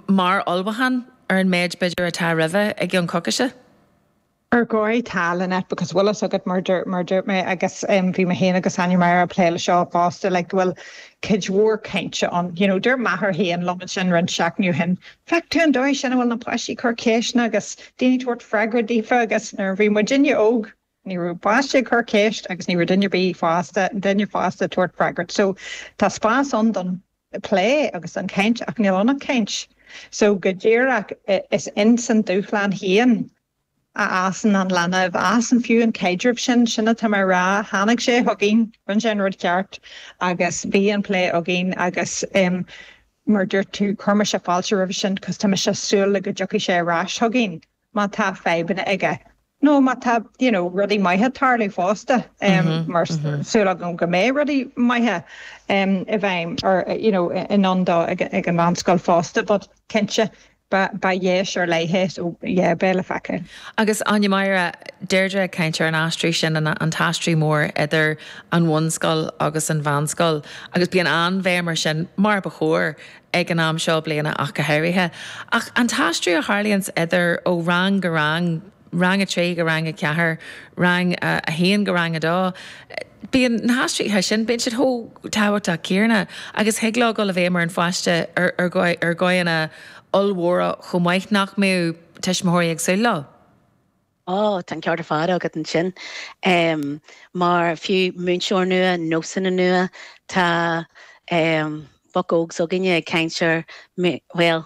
mar ullmhúchán ar an méid, b'fhéidir, atá roimhe i gceann coicíse. Ar dhóigh, tá, Lynette, because bhfuil fhios agat mar a dúirt mé, agus bhí mé féin agus Áine Máire ag plé leis seo fosta, like, go bhfuil cuid mhór cainte ann, you know, dúirt m'athair féin liom ansin roinnt seachtainí ó shin, Feiceann tú an dóigh sin a bhfuil na páistí ag cur ceisteanna agus daoine ag tabhairt freagra daofa agus nuair a bhí muidinne óg. Ní raibh páiste ag cur ceist agus ní raibh duine ar bith fásta, duine fásta ag tabhairt freagra. So, tá spás ann don plé agus don chaint ach níl ann ach caint. So, go díreach, is ins an dúshlán féin a fhásann an leanbh, a fhásann fiú an caidreamh sin, sin atá mé a rá, tháinig sé chugainn, rinne sé an rud ceart agus bhí an plé againn agus mar a dúirt tú, chuir mise fáilte roimhe sin cos tá mise ag súil go dtiocfaidh sé ar ais chugainn. má tá fadhbanna aige nó má tá you know rudaí maithe ag tarlú fosta mar tá súil agam go mbeidh rudaí maithe i bhfeidhm or you know i ndán dó ag an mheánscoil fosta but cinnte ba dheis ar leith é so yeah beidh le feiceáil. Agus Áine Máire, Deirdre ag caint ar an aistriú sin, an t-aistriú mór idir an bhunscoil agus an mheánscoil agus bíonn an-bhéim air sin mar ba chóir, ag an am seo bliana ach go háirithe, achan aistriú a tharlaíonns idir ó rang go rang, rang a trí go rang a ceathair, rang a haon go rang a dó, bíonn na haistrithe sin, bíonn siad chomh tábhachtach céarna agus thig leo dul i bhfeidhm ar an pháiste ar dhóigheanna ollmhóra chomh maith nach mbeadh tuismitheoirí ag súil leo. Ó, tá an ceart ar fad agat ansin. Mar fiú múinteoir nua, nósanna nua, tá boc óg s'againne ag caint ar, bhuel,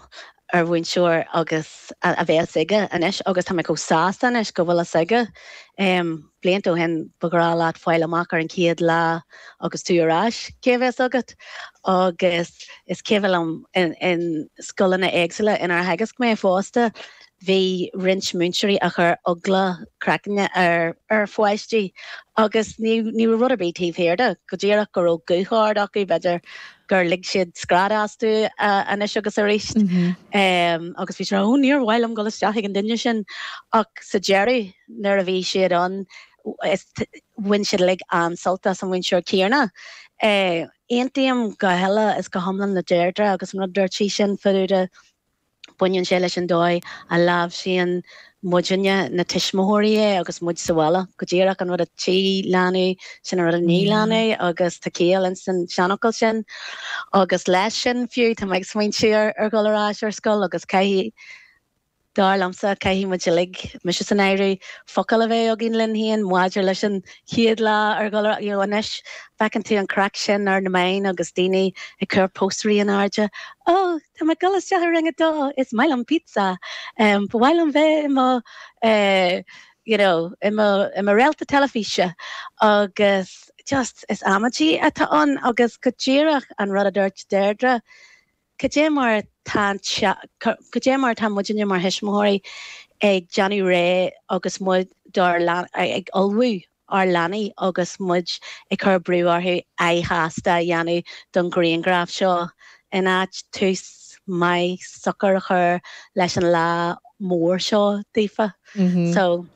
an mhúinteoir a bhéas aige anois agus tá mé chomh sásta anois go bhfuil fhios aige. Blianta ó shin, ba ghnách leat fáil amach ar an chéad lá agus tú ar ais cé a bhéas agat agus is cuimhin liom in scoileanna éagsúla inar theagasc mé fosta, Bhí roinnt múinteoirí a chuir eagla a gcraicinn ar pháistí agus ní raibh rud ar bith taobh thiar de, go díreach go raibh guth ard acu, b'fhéidir gur lig siad scread astu anois agus arís agus bhí siad á rá 'Ó, níor mhaith liom dul isteach ag an duine sin! Ach sa deireadh, nuair a bhí siad ann, bhain siad uilig an-sult as an mhúinteoir céarna. Aontaím go huile is go hiomlán le Deirdre agus an rud a dúirt sí ansin fadúda, Baineann sé leis an dóigh a láimhsíonn muidinne, na tuismitheoirí, é agus muid sa bhaile, go díreach an rud a tchí leanaí, sin an rud a ní leanaí agus tá ciall insan seanfhocal sin. Agus leis sin fiú, tá mé ag smaointiú ar dhul ar ais ar scoil agus caithfidh, dar liomsa, caithfidh muid uilig, mise san áireamh, focal a bheith againn linn féin maidir leis an chéad lá ar dhul ar, you know, anois feiceann tú an chraic sin ar na meáin agus daoine ag cur póstaerí in airde, oh, Tá mé ag dul isteach i rang a dó, is maith liom pizza. Ba mhaith liom bheith i mo you know i mo i mo réalta teilifíse agus just is amaidí atá ann agus go díreach an rud a dúirt Deirdre, cad é mar atá an cad é mar atá muidinne mar thuismitheoirí ag déanamh réidh agus muid ag ullmhú ár leanaí agus muid ag cur brú orthu aghaidh shásta a dhéanamh don ghrianghraf seo, in áit tús maith socair a chur leis an lá mór seo daofa. So,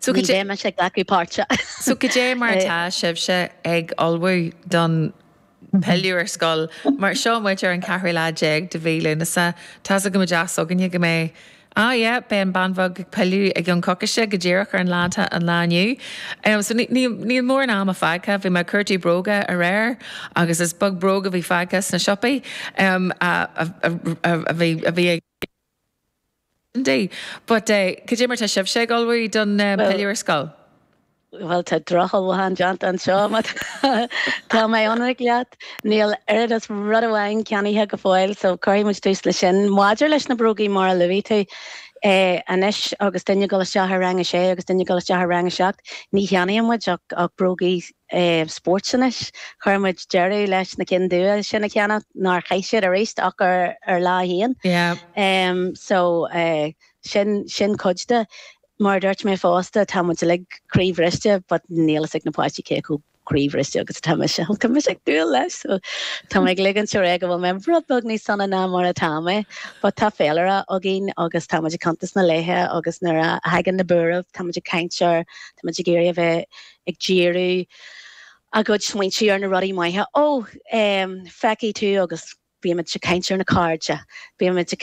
ní bheidh mise ag glacadh páirte. So, cad é mar atá sibhse ag ullmhú don pilleadh ar scoil. Mar, seo muid ar an cheathrú lá déag de mhí Lúnasa. Tá's go maith againne go mbeidh. ah yeah, beidh an bhean bheag ag pilleadh i gcionn coicise, go díreach ón lá atá ann inniu. em so níl mórán ama fágtha. Bhí mé ag cuartú bróga aréir agus is beag bróg a bhí fágtha sna siopaí. em a bhí ag. Andy, but eh cad é mar tá sibhse ag ullmhú don pilleadh ar scoil? Bhuel tá drochullmhúchán déanta anseo má tá mé ionraic leat, níl oiread is rud amháin ceannaithe go fóill so cuirfidh muid tús leis sin. Maidir leis na brógaí mar a luaigh tú, eh anois agus duine ag dul isteach ar rang a sé agus duine ag dul isteach ar rang a seacht, ní cheannaíonn muid ach, ach brógaí. spóirt anois. Chuir muid deireadh leis na cinn dubha sin a cheannach nár chaith siad aríst ach ar Lá 1. So, sin cuid de. Mar a dúirt mé fosta, tá muid uilig croíbhriste but níl a fhios ag na páistí cé chomh croíbhriste agus atá mise, though tá mise ag dúil leis! So, tá mé ag ligint orm go bhfuil mé rud beag níos sona ná mar atá mé but tá féilire againn agus tá muid ag cuntas na laethe agus nuair a thagann na buairimh, tá muid ag caint air, tá muid ag iarraidh a bheith. ag díriú a gcuid smaointe ar na rudaí maithe, 'Ó, eh, feicfidh tú agus bímid ag caint ar na cairde, bímid ag.